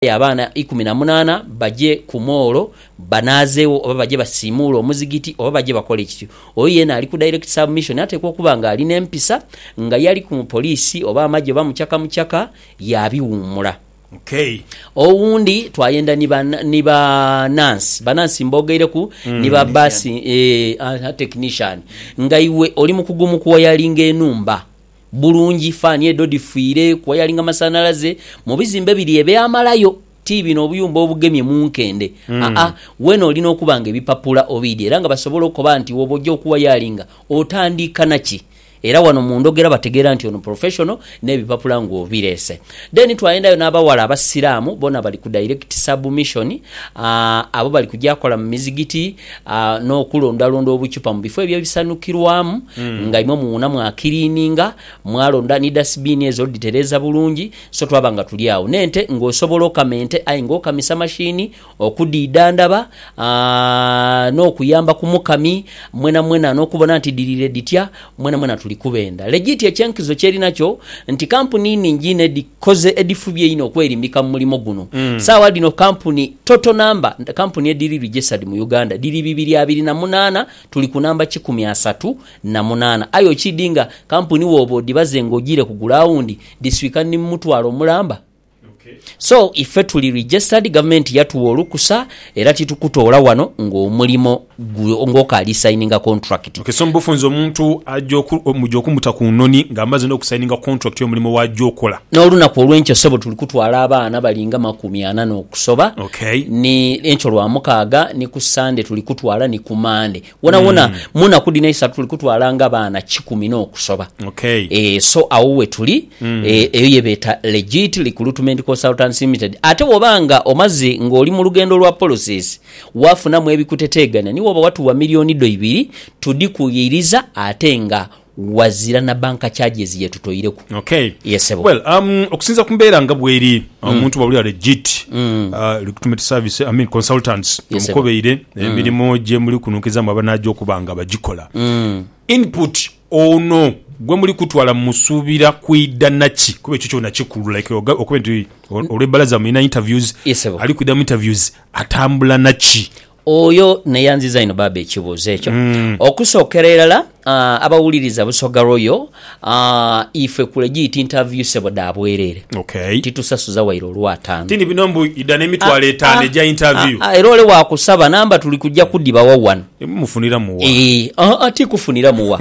Aye abaana eikumi na munaana baje ku moolo banaazeegho oba baje basiimuule omuzigiti oba baje bakole kiki, oyo yeena ali ku direct submission ateekwa okuba ng'ali n'empisa, nga yali ku mupoliisi oba amagye oba mucaka mucaka, yaabiwuumula. Okay. Owundi twayenda ni ba ni ba nansi, banansi mboogeireku, ni ba bbaasi, eeh, aha, technician. Nga iwe oli mukugu mu kuwayalinga enhumba. Bulungi, faani edho dhifiire ku wayaling a masanhalaze mu bizimbe biri eby'amalayo, ti bino obuyumba obugemye mu nkende, aa, weene oli n'okuba nga ebipapula obiidhi era nga basobola okoba nti woba oja okuwayalinga otandiika na ki? Era wano mu ndhogera bategeera nti ono professional n'ebipapula ng'obireese. Then twayendayo n'abawala Abasiraamu bona bali ku direct submission, abo bali kugya kola mu mizigiti n'okulondalonda obuchupa mu bifo ebyo ebisanukirwamu nga imwe muwuuna mwakiriininga, mwalonda ni dasibiini ezo dhitereeza bulungi. So twaba nga tuli agho n'ente ng'osobola okama ente aye ng'okamisa mashini. okudhiidhandhaba n'okuyamba ku mukami mwenamwena n'okubona nti dhiriire dhitya, mwenamwena tuli kubenda. Legit ekyenkizo kyeri nakyo nti kampuni nnhingi inho edhikoze edhifubye einho okwerimbika mu mulimo guno. Saagha dhino kampuni, total number, kampuni edhiri registered mu Uganda dhiri bibiri abiri na munaana, tuli ku namba kikumi asatu na munaana. Aye okiidhi nga kampuni wooba odhibaze ng'ojiire kugula awundi, dhiswika ni mu mutwalo mulamba. So ife tuli registered, gavumenti yatuwa olukusa era titukutoola wano ng'omulimo gwo ng'okaali sayininga kontulakiti. Okay, so mu bufunze omuntu aja oku, muja okumuta ku noni nga amaze n'okusayininga kontulakiti y'omulimo w'aja okola? N'olunaku olw'enkyo ssebo tuli kutwala abaana bali nga makumi ana n'okusoba, Okay. ni enkyo Lwamukaaga ni ku Ssande tuli kutwala ni ku Mande. wonawona mm. munaku dino eisatu tuli kutwala nga baana kikumi n'okusoba okay. E, so awo wetuli mm. e, eh, eyo yebeeta legit recruitment consultants limited ate woba nga omaze ng'oli mu lugendo lwa policies wafunamu ebikuteteeganya niwoba watuwa miliyoni do ibiri tudikuyiriza ate nga Ghazira na bank charges yetutoireku. Okay. Yes sebo. Well um okusinzira ku mbeera nga bweri omuntu bwaba oli a legit recruitment service I mean consultants Yes, sebo. omukobeire emirimu gyemuli kununkizaamu aba naja okuba nga bagikola input ono gwemuli kutwala mumusuubira kwidha naki kuba ekyo kyona kikulu like oga- okube nti olwebbalaza mulina interviews Yes, sebo. ali kwidha mu interviews atambula naki? Oyo neyanziza inho baaba ekibuuzo ekyo. Okusookera irala abawuliriza Busoga Royal, ife kule giiti interview sebo dha bwerere. Titusasuza waire olwa ataano. Tini bino mbu idha nemitwalo etaano egya interview. Era ole wakusaba namba tuli kuja kudibawa wano. Mufuniramu wa? Eeh, aa ti kufuniramu wa.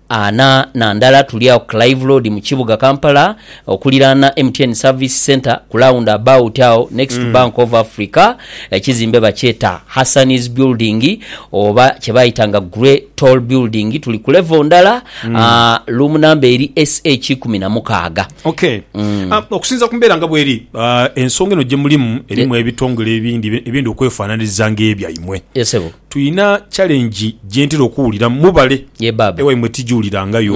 Ana na ndala tuli agho ku Clive Road mu kibuga Kampala okuliraana MTN Service Centre ku Round about agho next to Bank of Africa. Ekizimbe bakyeta Hassani's Building oba kye bayitanga Grey Tall Building. Tuli ku level ndala, room number eri SH ikumi na mukaaga. Ok. Okusinziira ku mbeera nga bweri, ensonga eno gye mulimu erimu ebitongole ebindi ebyenda okwefaananiriza ng'ebyaimwe. Yes, ssebo. Tulina challenge gyentera okuwulira mubale ewaimwe tijulirangayo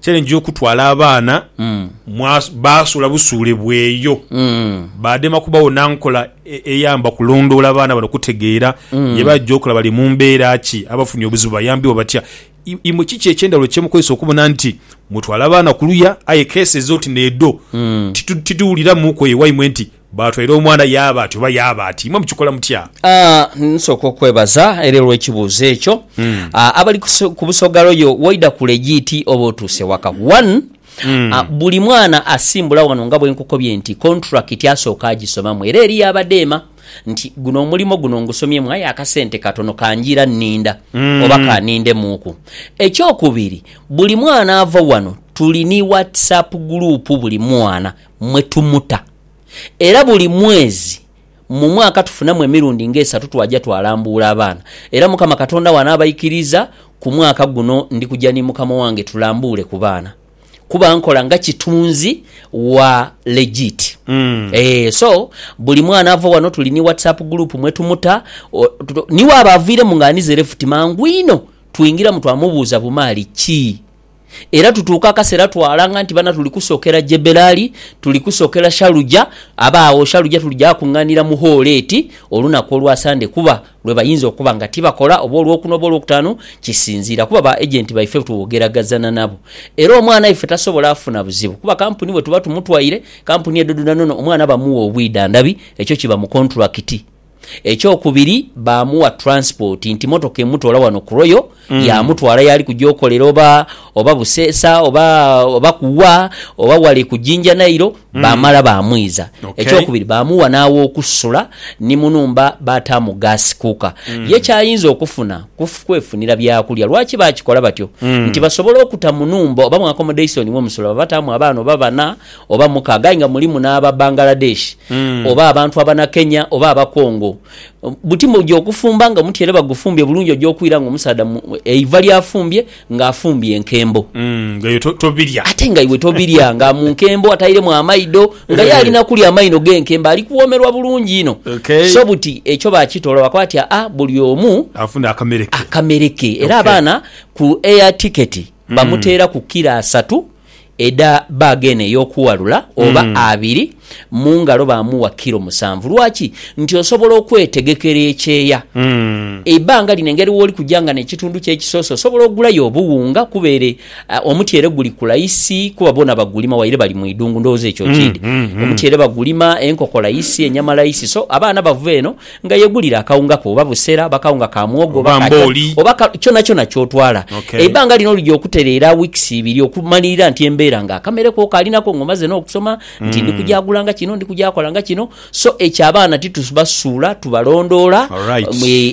challenge yokutwala abaana basula busule bweyo badema kubawo nankola eyamba kulondoola baana bano kutegeera byebaja okola bali mumbera ki abafunye obuzibu bayambibwa batya imwe kiki ekyendawulo kyemukozesa okubona nti mutwala abaana kuluya aye kesi ezoti nedo tituwuliramuku eyo ewaimwe nti Baatwaire omwana yaaba ati oba yaaba ati. Imwe mukikola mutya? A Nsooka okwebaza era olw'ekibuuzo ekyo. A Abali ku so ku Busoga Royal waidha ku legiiti oba otuuse waka. One, a buli mwana asimbula wano nga bwe nkukobye nti kontulakiti asooka agisomamu era eriyo abadeema nti guno omulimo guno ngusomyemu aye akasente katono kanjiira nninda oba ka nindemuuku. Ekyokubiri, buli mwana ava wano tuli ni WhatsApp guluupu buli mwana mwe tumuta era buli mwezi mu mwaka tufunamu emirundi nga esatu twaja twalambuula abaana era Mukama Katonda bw'anaabaikiriza ku mwaka guno ndi kuja ni mukama wange tulambuule ku baana kuba nkola nga kitunzi wa legit. Eeh so buli mwana ava wano tuli ni WhatsApp group mwe tumuta ni waaba aviiremu nga anize left mangu inho twingiramu twamubuuza bumaali ki Era tutuuka akaseera twalanga nti bana tuli kusookera Jeberaali, tuli kusookera Shaluja, abe agho Shaluja tulija kung'anira mu hoolo eti olunaku olwa Sande kuba lwe bayinza okuba nga tibakola oba Olwokuna oba Olwokutaanu kisinziira kuba ba agenti baife twogeragazana nabo era omwana waife tasobola afuna buzibu kuba kampuni bwe tuba tumutwaire kampuni edho dhona n'ono omwana bamuwa obwidhandhabi ekyo kiba mu kontulakiti. Ekyokubiri baamuwa transport nti motoka emutoola wano ku Royal yaamutwala yaali kuja okolera oba oba Buseesa oba oba ku wa oba wale ku Jinja Nile baamala baamwiza. Okay. Ekyokubiri baamuwa n'aw'okusula ni mu nhumba baataamu gas cooker. Ye ky'ayinza okufuna ku kwefunira byakulya. Lwaki baakikola batyo? Nti basobole okuta mu nhumba oba mu accommodation mwe musula baabataamu abaana oba bana oba mukaaga aye nga mulimu n'aba Bangladesh oba abantu Abanakenya oba Abakongo, buti muja okufumba nga omutyere bagufumbye bulungi oja okwira nga omusaadha eiva ly'afumbye nga afumbye enkembo ate nga iwe tobirya nga mu nkembo atairemu amaido nga ye ali na kulya amaino g'enkembo ali kuwoomerwa bulungi inho. So buti ekyo bakitoola bakoba bati aa buli omu akamere ke era abaana ku air ticket bamuteeraku kilo asatu edha baaga eno ey'okuwalula, oba abiri, mu ngalo baamuwa kilo musanvu. Lwaki? Nti osobola okwetegekera ekyeya. Eibaanga lino engeri wooli kuja nga n'ekitundu kyo ekisose osobola ogulayo obuwunga kuba ere omutyere guli kula isi kuba boona bagulima waire bali mu idungu. Ndowooza ekyo okiidhi. Omutyere bagulima, enkoko la isi, enyama la isi so abaana bava eno Nga yegulira akawunga ko oba busera oba kawunga ka mwogo oba ka chorba oba ka kyonakyona kyotwala, eibbanga lino lija okutereera weeks ibiri okumalirira nti embeera nga akamere ko okaali nako nga omaze n'okusoma nti ndi kujaagula nga kino ndi kujakola nga kino so ekyo abaana titubasuula tubalondoola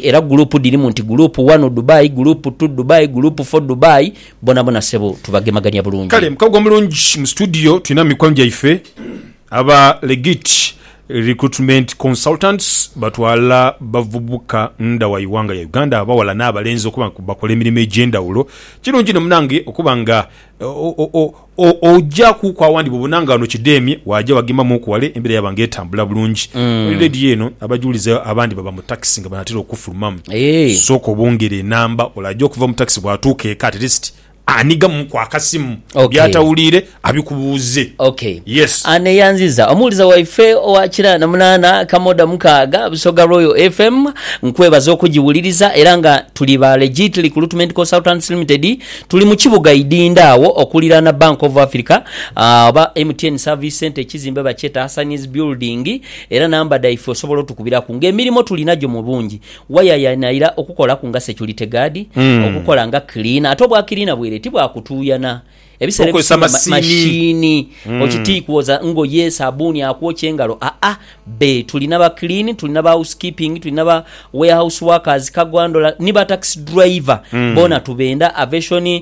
era group dhirimu nti group one Dubai, group two Dubai, group four Dubai bonabona sebo tubagemagania bulungi. Kale mukago omulungi mu studio tulinamu mikwano gyaife. Aba Legit Recruitment Consultants batwala bavubuka ndha wa ighanga ya Uganda abaghala n'abalenzi okuba nga bakola emirimo egy'endhawulo. Kirungi inho munange okuba nga ojakuuku awandhi bw'obona nga ghano kidheemye waaja wagembamuuku wale embeera yaba nga etambula bulungi. Oli ready eno? Abajulizi abandi baba mu takisi nga banaatera okufulumamu. Sooka obongere enamba, ole aja okuva mu takisi bw'atuuka eka at least Ani gamuku akasimu byatawuliire abikubuuze. Okay. Yes. Ani eyanziza? Omuwuliza waife owa kira na munaana kamoda mukaaga, Busoga Royal FM. Nkwebaza okugiwuliriza era nga tuli ba Legit Recruitment Consultants Limited. Tuli mu kibuga Idinda agho okuliraana Bank of Africa oba MTN Service Centre ekizimbe bakyeta Hassan's Building era namba dhaife osobola otukubiraku nga emirimo tulinagyo mu bungi Wayayaanhaira okukolaku nga security guard, okukola nga cleaner. Ate obwa cleaner bweire ti bwa kutuuyana. Ebiseera Tokozesa ebisinga ma- masiini. masiini. Oti ti kwoza ngoye, sabuuni akwokya engalo. Aa, bbe. Tuli n'aba clean, tuli n'aba housekeeping, tuli n'aba warehouse workers, cargo handler, ni ba taxi driver. Boona tubenda. Aviation,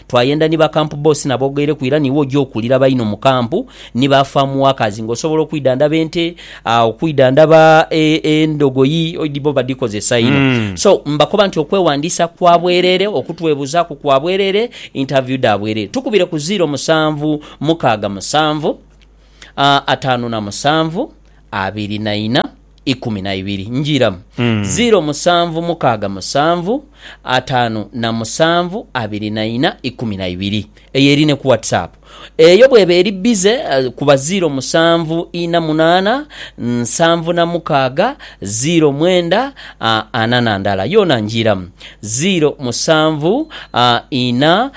Twayenda ni ba camp boss na bogaireku ira niiwe oja okuwulira baino mu camp ni ba farm workers nga osobola okwidhandhaba ente, okwidhandhaba endogoyi bo badhikozesa inho. So mbakoba nti okwewandisa kwa bwerere, okutwebuzaaku kwa bwerere, interview dha bwerere. Tukubire ku ziro musanvu mukaaga musanvu, ataanu na musanvu, abiri na ina. ikumi na ibiri njiramu ziro musanvu mukaaga musanvu ataanu na musanvu abiri na ina ikumi na ibiri. Eyo eri ne ku WhatsApp. Eyo bw'eba eri bize, kuba ziro musanvu ina munaana nsanvu na mukaaga ziro mwenda ana na ndala. Yoona njiramu ziro musanvu ina.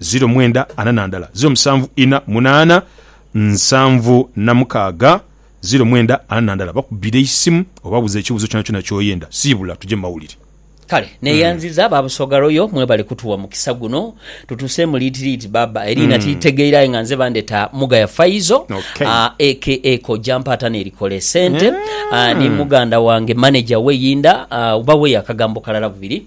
ziro mwenda ana na ndala, ziro musanvu ina munaana nsanvu na mukaaga, ziro mwenda ana na ndala. Bakubire eisimu obabuuze ekibuuzo kyonakyona ky'oyenda. Siibula tuje mu mawulire. Kale neyanziza ba Busoga Royal mwebale kutuwa mukisa guno tutuseemu liiti liiti baaba eriina tilitegeire aye nga nze bandeta Mugaya Faizo Okay. ah, aka Kojja Mpaata nerikola esente ah, ni muganda wange manager we Yinda ah, oba we akagambo kalala bubiri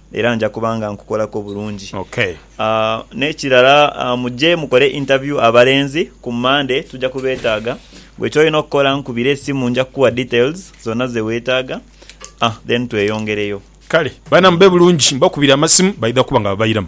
era nja kuba nga nkukolaku bulungi. N'ekirala muje mukole interview abalenzi ku Monday tuja kubeetaaga. Gwe ky'olina okukola nkubira esimu nja kukuwa details zonna ze weetaaga then tweyongereyo. Kale baana mube bulungi. Mbakubira amasimu baidha kuba nga babairamu.